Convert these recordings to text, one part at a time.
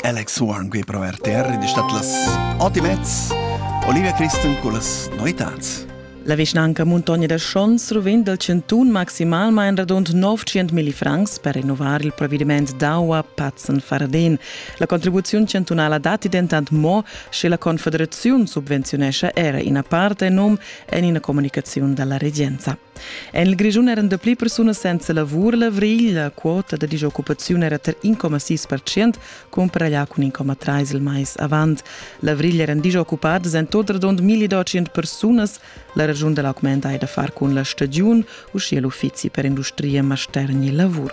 Alex Horn qui pro RTR ed es stat las ot e mezz Olivia Christen con las novitats. La vischnanca Muntogna da Schons ruvend dal cantun maximalmain radund 900 mil francs per rinnovar il provvediment d'aua Patzen-Fardin. La contribuziun chantunala datti dentant mo, sche la Confederaziun subvenziunescha era ina part en num en ina comunicaziun dalla regenza. En il Grischun eran dapli persunas senza lavur. L'avrigl, la quota da disoccupaziun era tar 1,6 percent, cumparaglià cun 1,3 il mais avant. L'avrigl eran disoccupadas en tot radund 1200 persunas. La ragiun da l'augment hai da far cun la stagiun, uschia l'uffizi per industria, mastergn e lavur.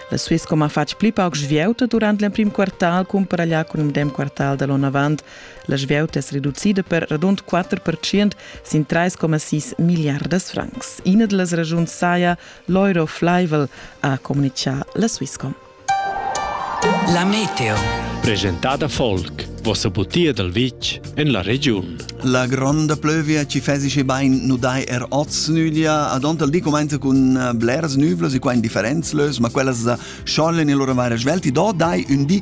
La Swisscom ha fatg pli pauc svieuta durant l'emprim quartal cumparaglià cun il medem quartal da l'onn avant. La svieuta es reducida per radund 4% sin 3,6 milliardas francs. Ina da las ragiuns saja l'euro flaivel, ha communichà la Swisscom. La meteo. Presentada Volk, vossa butia dal vitg en la regiun. La gronda plövia ci fesice bain nu dai er oz nüglia, ad onta il di comenza cun eh, blers nüvlos e qua in differenz lös, ma quellas eh, schollen e loro varie svelti, do dai un di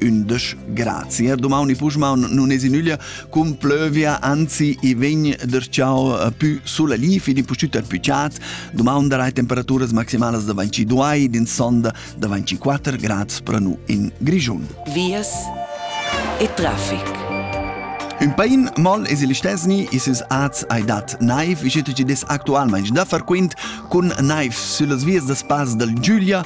undisch grazie. Domani Puschmaun non es in nüglia cum plövia, anzi i vegn der ciao eh, più sulla li, fin in pustüt er più chat. Domani darai temperaturas maximalas da 22, din sonda da 24 grad spranu in Grischun. Vias e traffic. Ün pain moll es il stesni isus az ai dat naiv, ischet ci des actualmaing da far quint cun naiv süllas vias da spas dal Giulia